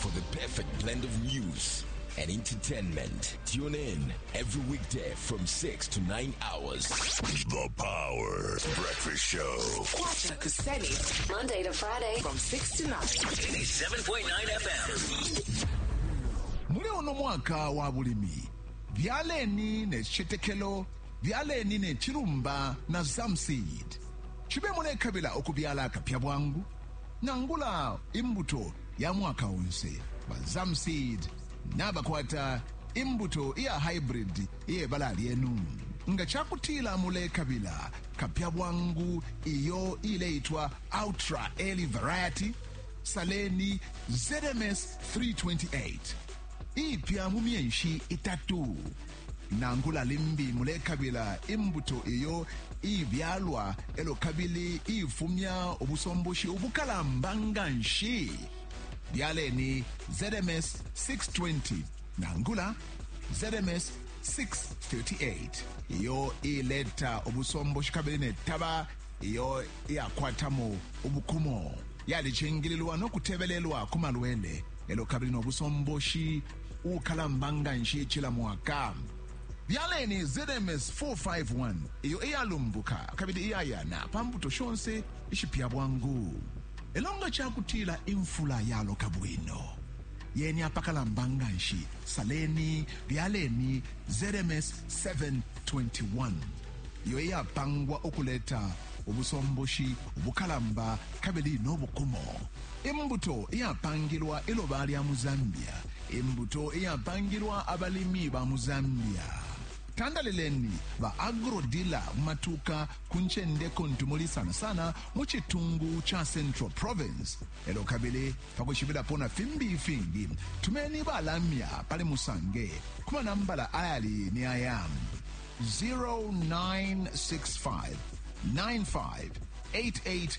For the perfect blend of news and entertainment, tune in every weekday from 6 to 9 hours. The Power Breakfast Show. Kwata Kuseni. Monday to Friday from 6 to 9. 87.9 FM. muli uno mwaka wa bulimi byaleni ne cicetekelo byaleni ne cilumba na zamseed cibe mulekabila ukubyala akapya bwangu nangula imbuto ya mwaka onse, ba Zamseed nabakwata imbuto iya haibridi iye bala lyenu. Nga ca kutila mulekabila kapya bwangu iyo iileitwa Ultra Early Variety, saleni ZMS 328, iipya mu myeshi itatu. Nangula limbi mulekabila imbuto iyo iibyalwa e lyo kabili iifumya ubusomboshi ubukalamba nga nshi, byaleni ZMS 620 nangula ZMS 638 iyo iileta ubusomboshi kabili ne taba iyo iyakwatamo ubukumo, yalicingililwa no kutebelelwa ku malwele e lyo kabili no busomboshi. uukalamba nga nshi cila mwaka. Byaleni ZMS 451 iyo iyalumbuka kabili iyayana pa mbuto shonse ishipya bwangu. Lelo nga ca kutila imfula yaloka bwino, yeni apakalamba nga nshi, saleni, byaleni ZMS 721 iyo iyapangwa ukuleta ubusomboshi ubukalamba kabili no bukumo. Imbuto iyapangilwa iloba lya mu Zambia. Imbuto iyapangilwa abalimi ba mu Zambia. Tandalileni ba agro-dealer mu matuuka ku ncende kuntu muli sana sana mu citungu ca Central Province. E lyo kabili pa kwishibilapo na fimbi ifingi, tumeni ba lamya pali Musange ku manambala ayali ni aya 0965 95 88